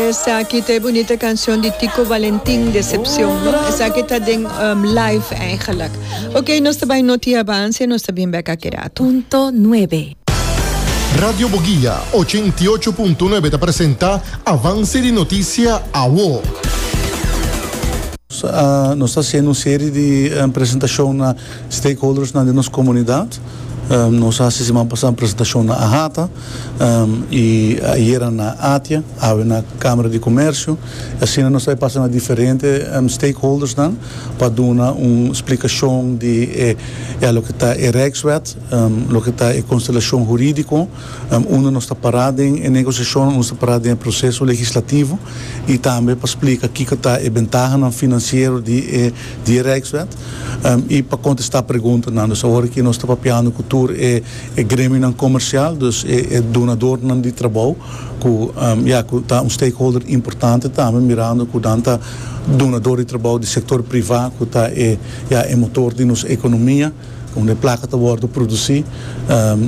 Esaki ta e bunita cancion di Tico Valentin Decepcion no esaki ta den um, live eigenlijk ok nos ta bay noti avance nos ta bin bek aki rato. Punto nuebe. Radio Boguia ochenta i ocho punto nuebe ta presenta Avance di Noticia awo. Nos ta haciendo un serie di presentacionnan. Stakeholdersnan di nos komunidat. Nos a hasi siman pasá presentashon na Ahata i ayera na Atia, awe na Kamera di Komersio. I asina nos a pasa na diferente stakeholdersnan pa duna un splikashon di e ya loke ta e Rijkswet, loke ta e konstelashon hurídiko unda nos ta pará den e negosiashon, unda nos ta pará den e proseso legislativo i tambe pa splika kiko ta e bentahanan finansiero di e di Rijkswet i pa kontestá preguntanan. Dus awor aki nos ta papiando ku tur e gremionan komersial, dus e donadornan di trabou ku ya ku ta un stakeholder importante tambe mirando ku nan ta donador di trabou di sektor privá ku ta e ya e motor di nos ekonomia unda e plaka ta wòrdu produsí.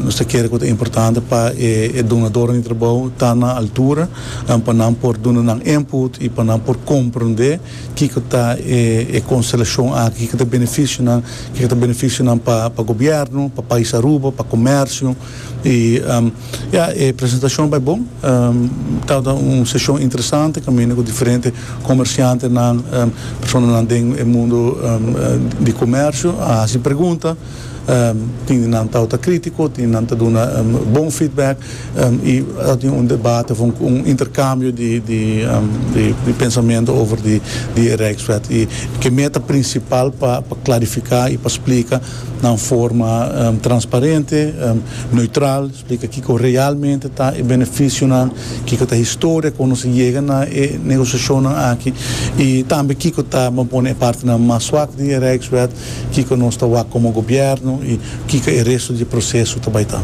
Nos ta kere ku ta importante pa e donadornan di trabou ta na altura pa nan por duna nan input i pa nan por komprondé. Kiko ta e konstelashon aki? Kiko ta e benefisionan? Kiko ta benefisionan pa pa gobièrnu, pa pais Aruba, pa komèrsio? I ya, e presentashon bai bon. Tabata un seshon interesante kaminda ku diferente komershantenan, personanan den e mundu di komèrsio a hasi pregunta. tin di nan tau ta critico, tin di nan ta duna bon feedback y a tin un debate of un intercambio di pensamento over di e Rijkswet y ke meta principal pa clarifica y pa splica na un forma transparente, neutral, splica kico realmente ta e beneficionan, kico ta e historia con nos a yega na e negociacionnan aki y tambe kico ta, bo pone, e partenan mas swak di e Rijkswet. Kiko nos ta wak komo gobièrnu i kiko e restu di e proseso ta bai ta?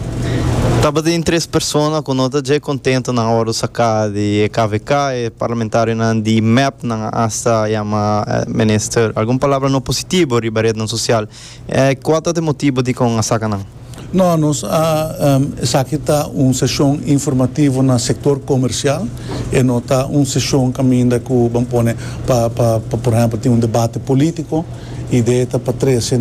Tabatin tres persona ku no ta dje kontento nan ora saka di e kvk. E parlamentarionan di mep nan a asta yama minister algun palabra no positibo riba retnan sosial. Kual ta e motibo dikon a saka nan? No, nos a esaki ta un seshon informativo na sektor komersial, e no ta un seshon kaminda ku ban pone pa pa por ehèmpel tin un debate polítiko. Idea ta pa trese